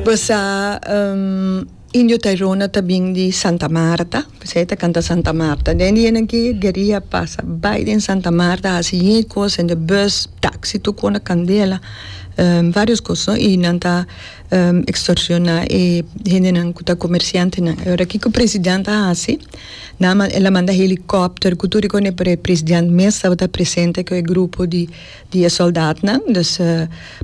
Basa Indio Tairona ta bin di Santa Marta, p'esei e ta kanta Santa Marta. Den di aña aki gueria a pasa bai den Santa Marta, a hasi yey kos hende bus, taxi, tur kos na kandela, varios kos no, i nan ta extorsiona e hendenan ku ta komersiantenan. E ora kiko president a hasi, nan a manda helikòpter ku tur e president mes tabata presente ku e grupo di di e soldatnan, dus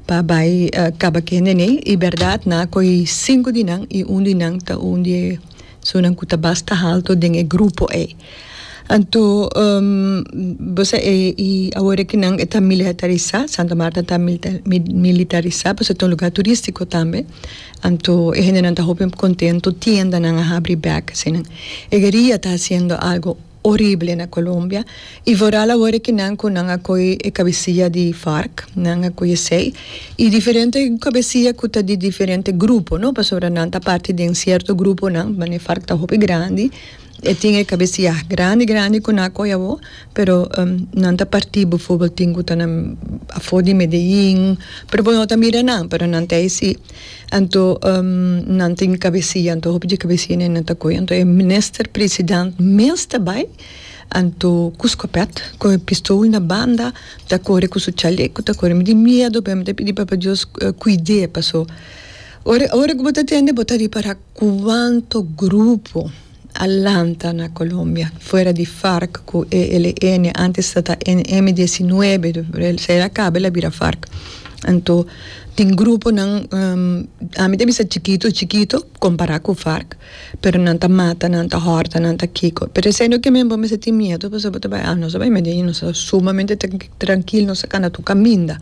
pa bai kaba ku hende nei, i bèrdat na koi sinku di nan i un di nan ta un di e sunan ku ta basta haltu den e grupo ei. Anto bo sa e i awor ku nan e ta milihatarisá, Santa Marta ta militarisá pasobra e ta un lugá turistiko tambe, anto e hendenan ta hopi kontentu, tiendanan a habri bèk, asina. E gueria ta hasiendo algu Horibele na Colombia y vooral awor e kinan cu nan a coy e cabecilla di Farc, nan a coy esey y diferente cabecilla cu ta di diferente grupo, no, pasobra nan ta parti den cierto gruponan, mane Farc ta hopi grandi, e tin e cabecilla grandi grandi cu nan a coy awor, pero nan ta parti befo tin cu ta na afor di Medellin, pero bo no ta mira nan, pero nan ta ey si. Anto nan tin cabesia anto hopi di cabesia ne nan ta coe anto e minister president mes ta bay anto cu scopet cu e pistol na banda ta core cu su chaleco ta core mi tin miedo pero mi ta pidi papa Dios cuide pasobora ora cu bo ta tende bo ta repara cuanto grupo a lanta na Colombia fuera di Farc cu ELN, antes ta ta M diecinuebe, despues a caba el a bira Farc, anto tin gruponan ami ta bisa chikito chikito compara cu Farc pero nan ta mata nan ta horta nan ta kico pero esey no ke men bo mester tin miedo pasobra bo ta bay a nos ta bay medi ayi nos ta sumamente trankil nos ta cana tur caminda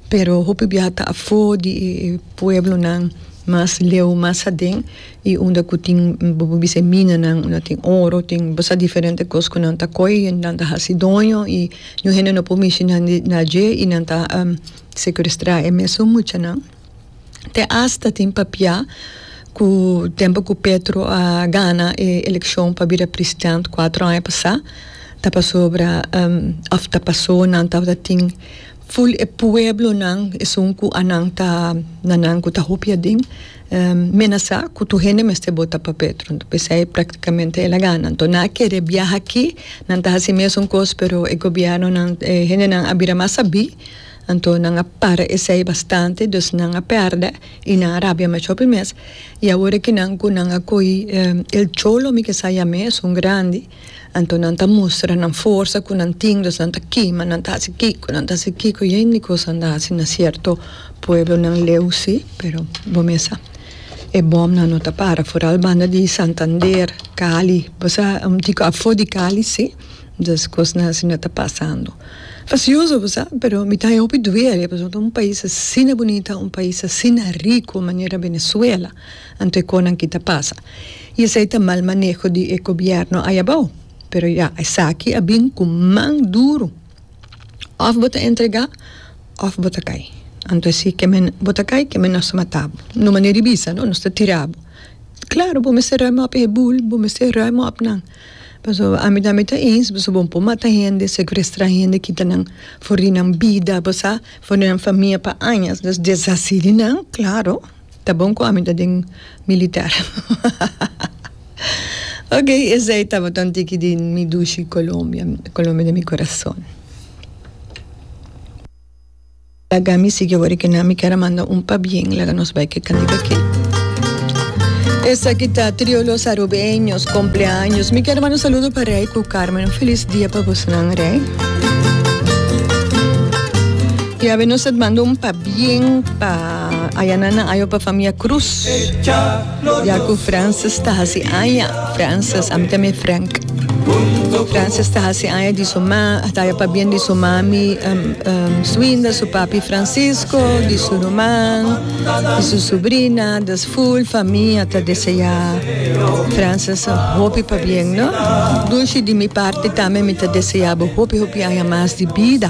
pero hopi biaha ta afo di e pueblonan mas leu mas aden. y unda cu tin bo bo bisa e minanan unda tin oro tin bo sa diferente cos cu nan ta coy y nan ta haci doño y ñu hende no por mishi nan di na dje y nan ta secuestra e mesun muchanan te hasta tin papia cu tempo cu Petro a gana e eleccion pa bira president cuatro aña pasa ta pasobra of ta paso nan tabata tin Full e pueblonan esun ku anan ta na nan ku ta hopi adin menasá ku tur hende mester bota pa Petro anto pesei praktikamente el a gana anto nan a kere biaha aki nan ta hasi mesun kos pero e gobièrnunan e hendenan a bira mas sabí anto nan a para esei bastante dus nan a pèrdè i nan a rabia mashó pi mes i awor e kinan ku nan a kohi el cholo mi ke sa yam'é esun grandi. Anto nan ta mustra nan forsa ku nan tin, los nan ta kima, nan ta hasi kiko, nan ta hasi kiko, yen di kos nan ta hasi na sierto pueblonan leu si, pero bo mesa e bòmnan no ta para, foral banda di Santander, Cali, bo sa dico afo di Cali si, dus kosnan asina ta pasando, grasioso bo sa, pero mi ta haña hopi duele pasobra un pais asina bunita, un pais asina rico manera Venezuela. Anto e konan ki ta pasa. I esei ta mal maneho di e gobièrnu ai abou. Pero ya, esaki a bin ku man duru. Òf bo ta entregá òf bo ta kai. Anto e si, keme bo ta kai, keme nos ta matá bo. No manera di bisa, no, nos ta tirá bo. Klaru, bo mester rui mòp e bul, bo mester rui mòp nan. Pasobra ami ta ami ta eens, pasobra bo no por mata hende, sekwestrá hende, kita nan for di nan bida, bo sa, for di nan famia pa añas. Desasí di nan, klaru. Ta bon cu ami ta den militer. Ok, esey tabata un tiki di mi dushi Colombia, Colombia di mi corazon. Laga mi sigui awor eke nan, mi kier a manda un pabien, laga nos bai ke cantica ke. Esaki ta Trio Los Arubeños, Compleaños. Mi kier manda un saludo pa Rey cu Carmen, un feliz dia pa bosonan Rey. Ya be nos a manda un pabien pa. A ayana nan ayo pa famia Cruz. Ya cu Francis ta hasi aya. Francis, ami ta me Frank. Francis ta hasi aya di su ma, ta aya pa bien di su mami um, um, Swinda, su papi Francisco, di su ruman, di su sobrina, dus full famia ta desea Francis hopi pa bien, no? Dulce di mi parte tambe mi ta deseabo hopi hopi aya mas di bida.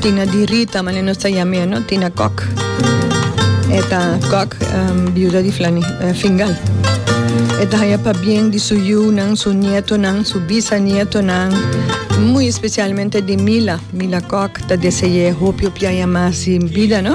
Tina di Rita, mane nos ta yam'é, no? Tina Kok. E ta Kok, um, biuda di Flani, uh, Fingal. E ta haya pa bien di su yunan, su nietonan, su bisanietonan, muy especialmente di Mila. Mila Kok ta desey'é hopi, hopi haya mas di bida, no?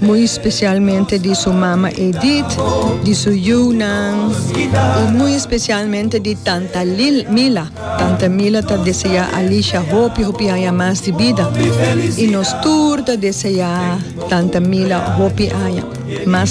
Muy especialmente di su mama Edith, di su yunan y muy especialmente di tanta Mila. Tanta Mila ta desea Alicia hopi hopi aña mas di bida y nos tur ta desea tanta Mila hopi aña mas.